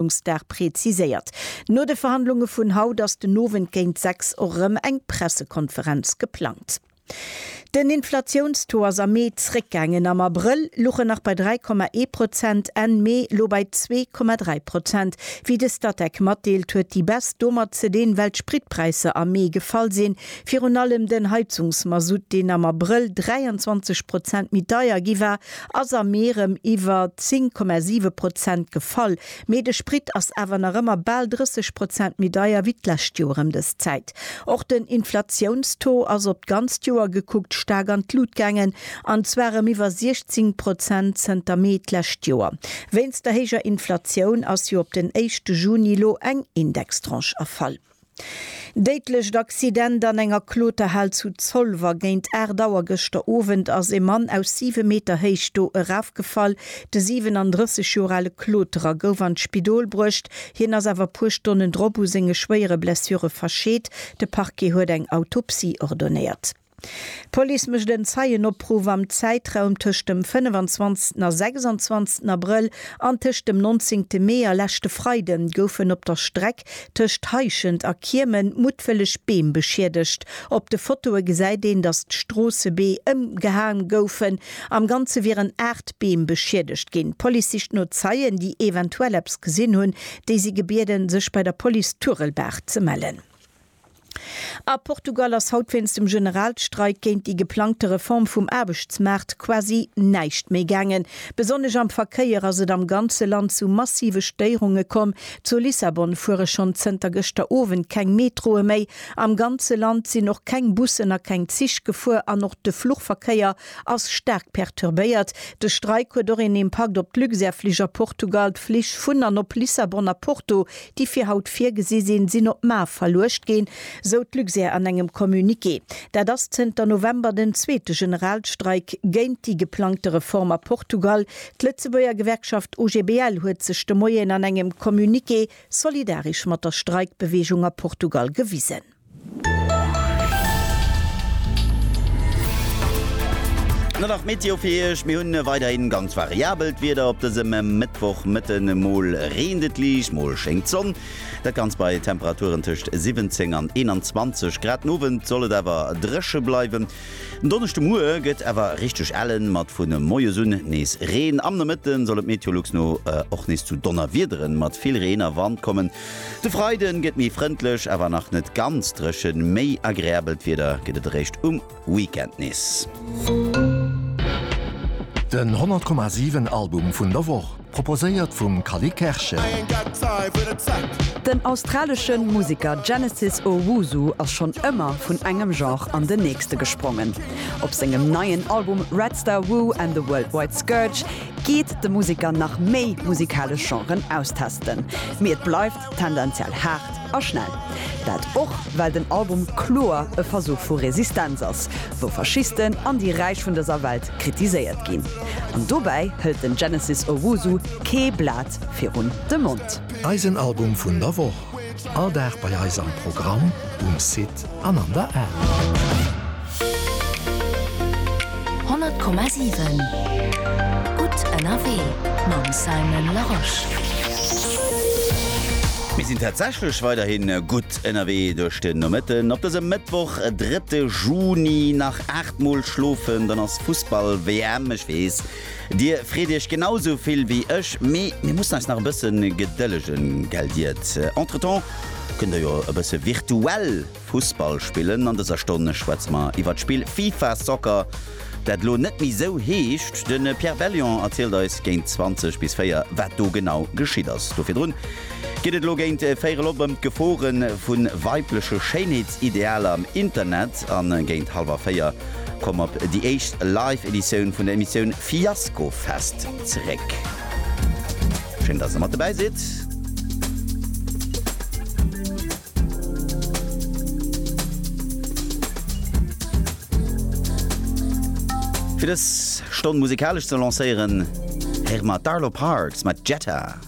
Verhandlungsdag preziséiert. No de Verhandlunge vun haut ass den Owend géint 6 och erëm eng Pressekonferenz geplangt. Den Inflatiounstaux ass am Mee zréckgaangen, am Abrëll luch en nach bei 3,1 Prozent, Enn Mee elo bei 2,3 Prozent. Wéi de Statec matdeelt, huet déi Baisse domat ze dinn, well d'Spritpräisser am Mee gefall sinn. Virun allem den Heizungsmasutt, deen am Abrëll 23 Prozent méi deier gi war, ass am Mee rem iwwer 10,7 Prozent gefall, mee de Sprit ass awer nach ëmmer bal 30 Prozent méi deier wéi d'lescht Joer em dës Zäit. Och den Inflatiounstaux ass op d'ganzt Joer gekuckt staark an d'Lut gaangen, an zwar rem iwwer 16 Prozent zënter Mee d'lescht Joer. Wéinst der héijer Inflatioun ass jo op den éischte Juni lo eng Indextranche erfall. Déidlecht Accident an enger Kloterhal zu Zolwer. Géint 8 Auer gëschter Owend ass e Mann aus 7 Meter Héicht do erafgefall. De 37 Joer ale Kloterer gouf an d'Spidol bruecht, hien ass awer e puer Stonnen drop u senge schwéiere Blessure verscheet. De Parquet huet eng Autopsie ordonéiert. D'Police mécht en Zeienopruff am Zäitraum tëscht dem 25 a 26 Abrëll an tëscht dem 19 Mee a leschte Freide goufen op der Streck tëscht Heischent a Kiemen muttwëlleg Beem beschiedegt. Op de Fotoe gesäit een, datt d'Stroossebeem ëmgehae goufen. Am Ganze wieren 8 Beem beschiedegt ginn. D'Police sicht no Zeien, déi eventuell eppes gesinn hunn. Déi si gebieden, sech bei der Police Turelbaach ze mellen. A Portugal ass haut wéinst dem Generalstreik géint déi geplangte Reform vum Aarbechtsmaart quasi näischt méi gaangen. Besonnesch am Verkéier ass et am ganze Land zu massive Stéierunge komm. Zu Lissabon fuere schonn zënter gëschter Owend keng Metroe méi. Am ganze Land sinn och keng Bussen a keng Zich gefuer an och de Fluchverkéier ass staark perturbéiert. De Streik huet och een Impakt op d'Luxair-Flich a Portugal. D'Flich vun an op Lissabon a Porto, déi fir haut virgesi sinn, sinn op mar verluecht ginn, sou d'Luxair an engem Communiqué. Dat ass zënter November den zweete Generalstreik géint déi geplangte Reform a Portugal. D'Lëtzebuerger Gewerkschaft OGBL huet sech de Moien an engem Communiqué solidaresch mat der Streikbeweegung a Portugal gewisen. Dann nach d'Meteo fir Iech, Mir hunn weiderhin ganz variabelt Wieder op dësem Mëttwoch. Mëtten mol reent et liicht, mol schéngt d'Sonn. Dat Ganzt bei Temperaturen tëscht 17 an 21 Grad. Den Owend soll et awer dréche bleiwen. Den Donneschdemoie gëtt awer richteg ellen, mat vu moies un nees Reen. Am Nomëtte soll et Meteolux no och nees zu Donnerwiederen mat vill Reen a Wand kommen. De Freide gëtt méi frëndlech, awer nach net ganz dréchen. Méi agreabelt Wieder gëtt et eréischt um Weekend nees. Den 100 Komma 7 Album vun der Woch, proposéiert vum Callie Kerschen. Den australesche Museker Genesis Owusu ass schonn ëmmer vun engem Genre an den nächste gesprongen. Op sengem neien Album Red Star Woo and the Worldwide Scourge geet de Museker nach méi musikalesch Genren austesten, mee et bleift tendenziell haart a schnell. Dat och well den Album kloer e Versuch vu Resistenz ass, wou Faschisten an déi Räich vun dëser Welt kritiséiert ginn. An dobäi hëlt den Genesis Owusu kee Blat virun de Mond. Eisen Album vun der Woch. All Dag bei eis am Programm, um Site an an der App. 100,7 Gutt ënnerwee mam Simon Larosche. Mir sinn tatsächlech weiderhi gutt ënnerwee duerch den Nomëtten op dësem Mëttwoch, drëtte Juni. Nach 8 Mol schlofen, dann ass Fussball-WM. Ech weess. Dir freet iech genau sou vill wéi ech, mee mir mussen eis nach e bësse gedëllegen, gell Diet? Entretemps kënnt der jo e bësse virtuell Fussball spillen. An dëser Stonn schwätze mer iwwert d'Spill FIFA Soccer, dat elo net méi sou heescht. De Pierre Bellion erzielt eis géint 20 bis 4, wat do genau geschitt ass. Do virdrun Geet et elo géint Véierel op ëm d'Gefore vu weibleche Schéinheetsidealer am Internet? A géint hallwer véier komm op déi éischt live Editioun vun der Emissioun Fiaskofest zeréck. Schéin, dass Der mat dobäi sidd. Fir dës Stonn musikalesch ze lancéieren, héiere mer d'Arlo Parks mat Jetta.